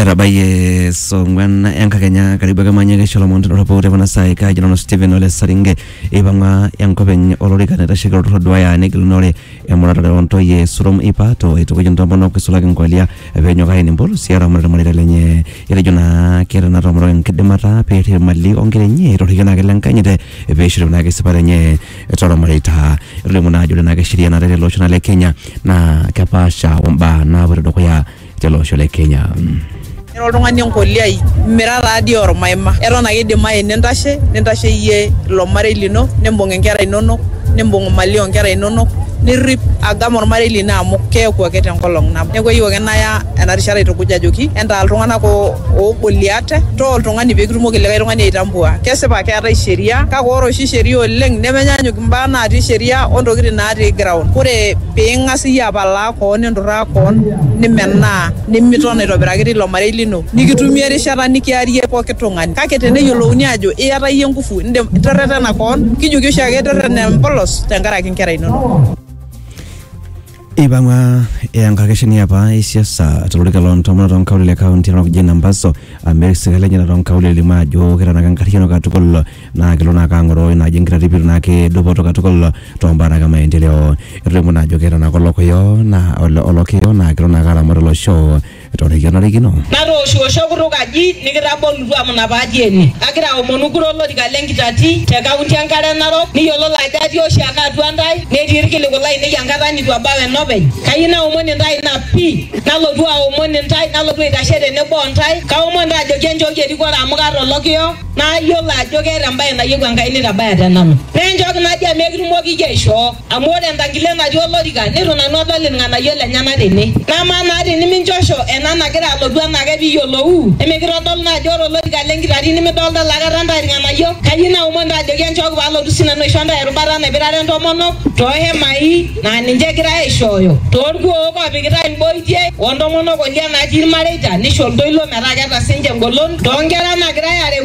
etabayie saa ong'wan enkakenya karibu ake manya kesho lomon tedoropu te kuna saai kaaji nanu Stephen Ole Saringe eipang'a enkop enye olorika naitasheki olturrur oduaya negilunore emuratare ontoyie Surom Ipato eitukuj intomonok eisulaki nkolia peenyok aen empolosi eramatare irmareita lenye etejo naa keeta ina tomononi enkidimata peerrip imali onkera enye torrikie naake lenkanyit peishori naake esipata enye tormareita etolimu naa ajo ore naa ake sheria naatae tele osho naa le kenya naa kepaasha ombaa naapoito dukuya tele osho le kenya Era oltung'ani enkoliai, mira taa dii ormaima. Eton ake eidimayu nintashe, nintashe iyie ilo marei lino, nimbung inkera inonok, nimbung imali oo nkera inonok, nirrip agam ormarei lino amu keeku ake te nkolong nabo. Neeku eyieu ake naya ena rishata aitukuj ajoki entaa iltung'anak oo oo Goliat too oltung'ani pee kitumoki likae tung'ani aitambua. Kesipa keetae sheria kake ore oshi sheria oleng nemenyaanyuk imbaa natii sheria o ntokitin natii ground. Ore pee ing'as iyie apalaa koon ninturraa koon nimenaa nimiton aitobiraki teilo marei lino nikitumie erishata nikiarie pooki tung'ani kake teneyiolouni aajo iyata iyie nguvu indim terretena koon kijoki oshiake terretena empolos tenkaraki inkera inonok. Eipang'a enkakeshani apa e siasa tolorika loo ntomonok too nkaulele e kaunti e North Ambaso amir sirkali enye too nkaulele elimu ajo ketanaka enkarriyiano katukul naa kelo naake ang'oroo ina aji enkitarruo naake dupoto katukul too mbaa naake e maendeleo. Etolimuo naa ajo keeta naake olokiyo naa olokiyo naa kelo naake aramat olosho. Etooroki olarikino. Natooshiwosho kutuk aji nikitabolutua amu ina paatii ene. Agira aomonu kura olorika le nkitati te kaunti e Nkare Narok niyiololo ajo atii oshiake atua intae netii ilkiliku lainei enkata neitu ebau enopeny. Kayieu naomon intae ina pii nalotu aomon intae nalotu aitashe tenebo o ntae. Kaomon intae ajoki enchooki erikore amu kaata olokiyo nayiolo ajo keeta embae nayieu Enkai neitabaya te nanu. Naa enchooki najo amu ekitumoki iyie aishoo. Amu ore entangile natii olorika neitu nanu adol ilng'anayio lenyena tene. Namaa naa tini minchosho ena nagira alotu enaake pee iyiolouu, emikitodolu naa ajo ore olorika le nkitati nimidolita laikata intae ilng'anayio? Kayieu naomon intae ajoki enchooki pee alotu sii nanu aisho intae erubata naipirare intomonok too hemai naa ninche egirai aaishooyo, too lkuook oopikitai imboitie, o ntomonok o lya natii ilmareita, neisho iltoilo metaa keeta sii ninche engolon, too nkera naagirai aareu,